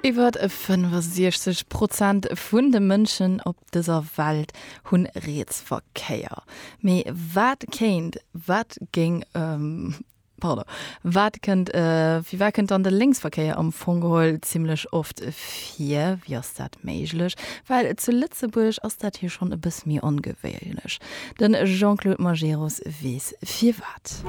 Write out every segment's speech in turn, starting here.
Iwwer 65 Prozent vun de Mënschen op dëser Welt hu Rietsverkéier. Mee wat kéint, wat géing, pardon, wat kënnt, firwat kënnt dann de Lénksverkéier am Fong geholl zimmlech oft vir? Wéi ass dat méiglech? Well zu Lëtzebuerg ass dat jo schonn e bësse méi ongewéinlech. De Jean-Claude Majerus weess firwat.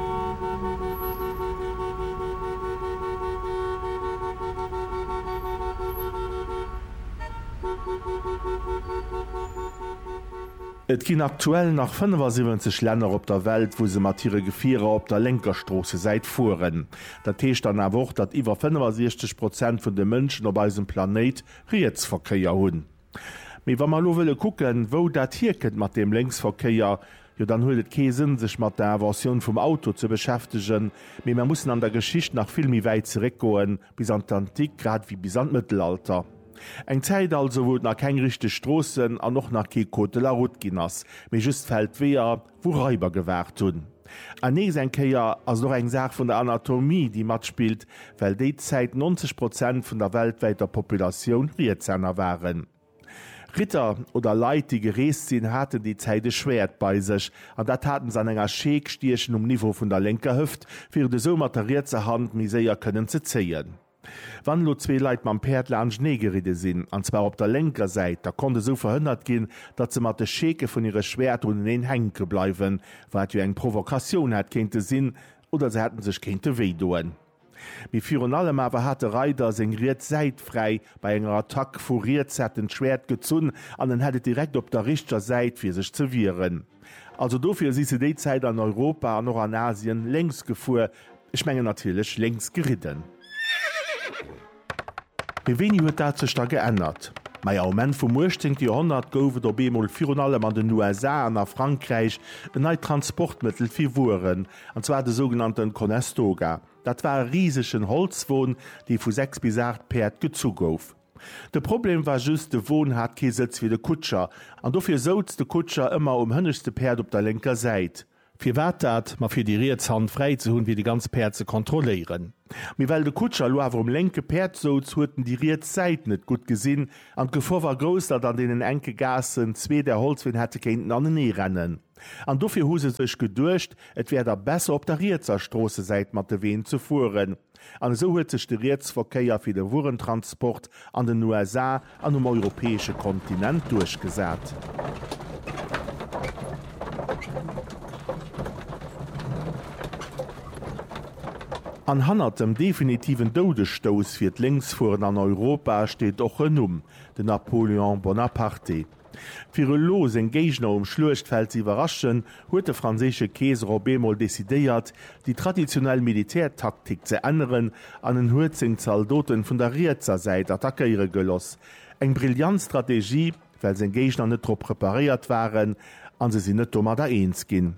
Et ginn aktuell nach 75 Länner op der Welt, wou se mat hire Gefierer op der lénker Stroossesäit fueren. Dat heescht dann awer och, datt iwwer 65 Prozent vun de Mënschen op eisem Planéit Rietsverkéier hunn. Mee wa mer elo wëlle kucken, wou dat hierkënnt mat deem Lénksverkéier, jo dann huet et kee Sënn, sech mat der Inventioun vum Auto ze beschäftegen, mee mer mussen an der Geschicht nach vill méi wäit zeréckgoen, bis an d'Antik, grad ewéi bis an d'Mëttelalter. Eng Zäit also, wou et nach keng richteg Stroossen an och nach kee Code de la route ginn ass, mee just Feldweeër, wou Raiber gewaart hunn. An nees eng Kéier ass et och eng Saach vun der Anatomie, déi matspillt, well déi Zäit 90 Prozent vun der weltwäiter Populatioun Rietshänner waren. Ritter oder Leit, déi gereest sinn, haten déi Zäit e Schwäert bei sech, an dat hate se an enger Scheek stiechen um Niveau vun der lénker Hëft, fir et esou mat der rietser Hand méi séier kënnen ze zéien. Wann elo zwee Leit mam Päerd laanschtenee geridde sinn, an zwar op der lénker Säit, da konnt esou verhënnert ginn, datt se mat de Scheeke vun hire Schwäerter uneneen hänke bleiwen, wat jo eng Provokatioun hätt kéinte sinn, oder se hätte sech kéinte wéi doen. Mee virun allem awer hat de Reider seng riets Säit fräi bei enger Attack. Vu riets hätt en d'Schwäert gezunn an en hätt et direkt op der richteger Säit, fir sech ze wieren. Also dofir si se déi Zäit an Europa an och an Asien lénks gefuer, Ech mengen natierlech lénks geridden. Mee wéini huet dat sech da geännert? Maja, um Enn vum 18. Joerhonnert gouf et op eemol virun allem an den USA an a Frankräich en neit Transportmëttel fir Wueren, an zwar de sougenannten Conestoga. Dat war e risegen Holzwon, dee vu 6 bis 8 Päerd gezu gouf. De Problem war just, de Won hat kee Sëtz fir de Kutscher, an dofir souz de Kutscher ëmmer um hënneschte Päerd op der lénker Säit. Firwat dat? Ma fir déi riets Hand fräi ze hunn, fir déi ganz Päerd ze kontrolléieren. Mee well de Kutscher elo awer um lénke Päerd souz, huet en déi riets Säit net gutt gesinn an d'Gefor war grouss, datt an deenen enke Gaassen zwee där Holzween hätte kéinten anenee rennen. An dofir hu se sech geduecht, et wär da besser op der rietser Stroossesäit mat de Ween ze fueren. An esou huet sech de Rietsverkéier fir de Wuerentransport an den USA an um europäesche Kontinent duerchgesat. An hannert dem definitiven Doudesstouss fir d'Lénksfueren an Europa steet och en Numm, den Napoléon Bonaparte. Fir elo seng Géigner um Schluechtfeld ze iwwerraschen, huet de franséische Keeser op eemol decidéiert, déi traditionell Militärtaktik ze änneren an en huet seng Zaldoten vun der rietser Säit attackéiere geloss. Eng brillant Strategie, well seng Géigner net drop preparéiert waren a se sinn net domadder eens ginn.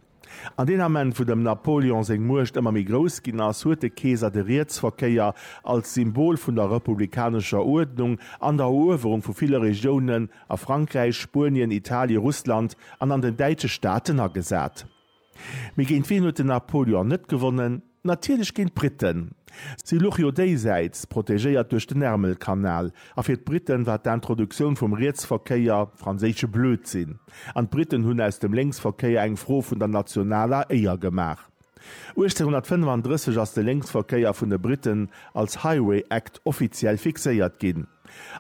An deen Ament, wou dem Napoleon seng Muecht ëmmer méi grouss ginn ass, huet de Keeser de Rietsverkéier als Symbol vun der republikanescher Uerdnung an der Eruewerung vu ville Regiounen a Frankräich, Spuenien, Italien, Russland an an den däitsche Staaten agesat. Mee géint wien huet den Napoleon net gewonnen? Natierlech géint d'Britten. Si luch jo déisäits, protegéiert duerch den Ärmelkanal. A fir d'Britten war d'Introduktioun vum Rietsverkéier franséische Blödsinn. An d'Britten hunn aus dem Lénksverkéier eng Fro vun der nationaler Éier gemaach. 1835 ass de Lénksverkéier vun de Britten als Highway Act offiziell fixéiert ginn.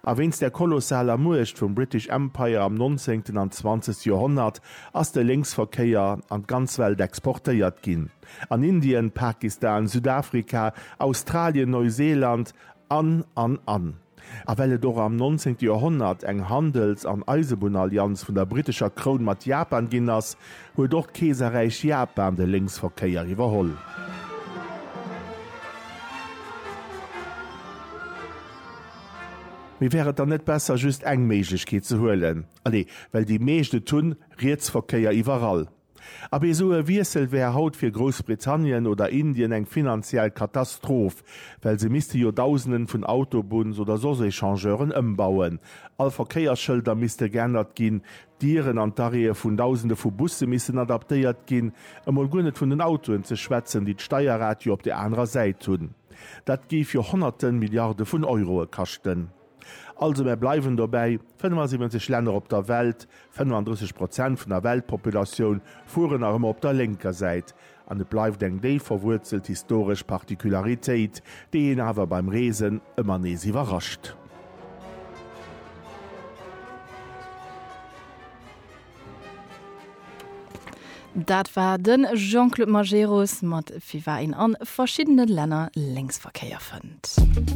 A wéinst der kolossaler Muecht vum British Empire am nonzéngten an zwanzegste Joerhonnert ass de Lénksverkéier an d'ganz Welt exportéiert ginn. An Indien, Pakistan, Südafrika, Australien, Neuseeland an, an, an. A well et och am 19. Joerhonnert eng Handels an Eisebunnallianz vun der brittescher Kroun mat Japan ginn ass, huet och d'Keeserräich Japan de Lénksverkéier iwwerholl. Mee wär et dann net besser, just eng Méiglechkeet ze huelen? Allez, well déi meescht et hunn, Rietsverkéier iwwerall. Ab esou e Wiessel wär haut fir Groussbritannien oder Indien eng finanziell Katastroph, well se misste jo Dausenden vun Autobunns oder soss Echangeuren ëmbauen, all Verkéiersschëlder misste geännert ginn, d'Dieren an d'Arrêtë vun Dausende vu Busse missten adaptéiert ginn, emol guer net vun den Autoen ze schwätzen, déi d'Steierrad jo op der anerer Säit hunn. Dat géif jo Honnerte Milliarde vun Euroe kaschten. Also mär bleiwen dobäi, 75 Länner op der Welt, 35 Prozent vun der Weltpopulatioun fueren nach ëmmer op der lénker Säit. An et bleift eng déif verwuerzelt historesch Particularitéit, déi een awer beim Reesen ëmmer nees iwwerrascht. Dat war de Jean-Claude Majerus mat Wie war een an verschiddene Länner Lénksverkéier fënnt.